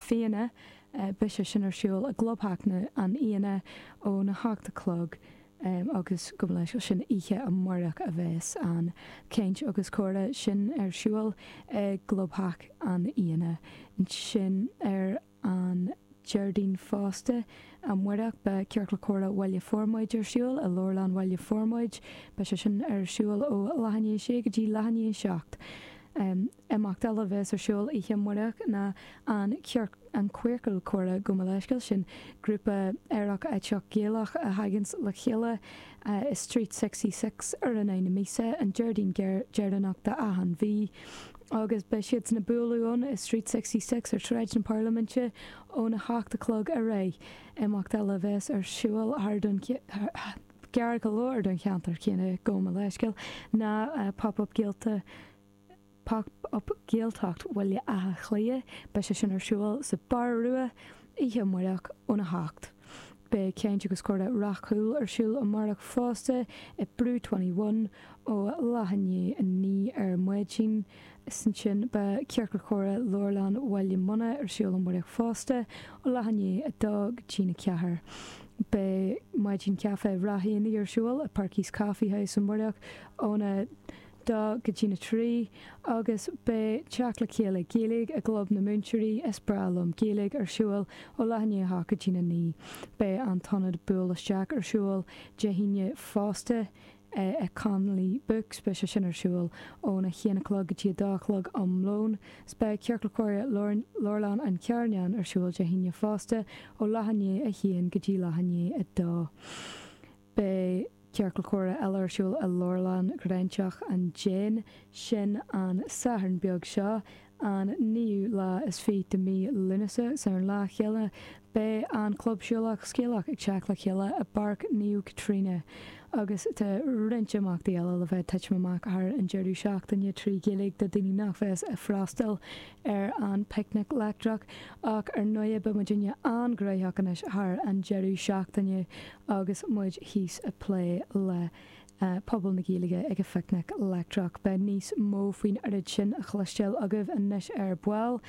Fianna, beidh sé sin ar siúl i gclubtheach an Fhianna óna hocht a chlog agus go bhfuil sé sin oíche amáireach a bheas an chaint agus comhrá sin ar siúl i gclubtheach an Fhianna. Ansin ar an Déardaoin fosta amáireach beidh Ciorcal Comhrá Bhaile Formaid ar siúl i Leabharlann Bhaile Formaid. Beidh sé sin ar siúl ó leath i ndiaidh a sé go dtí leath i ndiaidh a seacht. Imeacht eile a bheas ar siúl oíche amárach ná an An Queercal Comhrá gabh mo leithscéal sin, grúpa aerach aiteach Gaelach a thaganns le chéile i Street Sixy Six ar an Aoine míosa, an Déardaoin deireanach d'achan mhí. Agus beidh siadsan ag bualadh ann i Street Sixy Six ar Shráid na Pairliminte óna hocht a chlog ar aghaidh. Imeacht eile a bheas ar siúl thart gar go leor don cheantar céanna, gabh mo leithscéal, ná Pop Up Gaelta, Pop Up Gaeltacht Bhaile Átha Cliath, beidh sé sin ar siúl sa Bar Rua oíche amárach óna hocht. Beidh Caint agus Comhrá Ráth Cúil ar siúl amárach fosta i Brew Twenty One ó leath i ndiaidh a naoi ar maidin. Is ansin beidh Ciorcal Comhrá Leabharlann Bhaile Munna ar siúl amárach fosta ó leath i ndiaidh a dó go dtí na ceathair. Beidh Maidin Caife Ráth Eanaigh ar siúl i Perky's Coffee House amárach óna dó go dtí na trí agus beidh teacht le chéile Gaeilge i gClub na Múinteoirí, Is Breá Liom Gaeilge ar siúl ó leath i ndiaidh a hocht go dtí na naoi. Beidh an t-ionad Buail Isteach ar siúl Dé hAoine fosta i Connolly Books, beidh sé sin ar siúl óna haon a chlog go dtí a dó a chlog am lóin. 'S beidh Ciorcal Comhrá Leabharlann an Charnáin ar siúl Dé hAoine fosta ó leath i ndiaidh a haon go dtí leath i ndiaidh a dó. Beidh Ciorcal Comhrá eile ar siúl i Leabharlann Ghráinseach an Déin, sin an Satharn beag seo, an naoú lá is fiche de mhí Lúnasa. Is ar an lá chéanna, beidh an Club Siúlach Scéalach ag teacht le chéile i bPáirc Naomh Caitríona. Agus tá roinnt imeachtaí eile le bheith ag titim amach thar an deireadh seachtaine trí Ghaeilge do daoine nach bheas ag freastal ar an bPicnic Leictreach ach ar ndóighe beidh muidinne an-ghraitheach anois thar an deireadh seachtaine agus muid thíos ag plé le pobal na Gaeilge ag an bPicnic Leictreach. Beidh níos mó faoin oiread sin a chloisteáil agaibh anois ar ball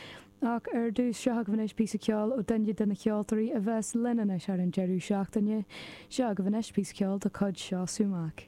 ach ar dtús, seo agaibh anois píosa ceoil ó duine de na ceoltóirí a bheas linn anois thar an deireadh seachtaine. Seo agaibh anois píosa ceoil de chuid Seosamh Mac.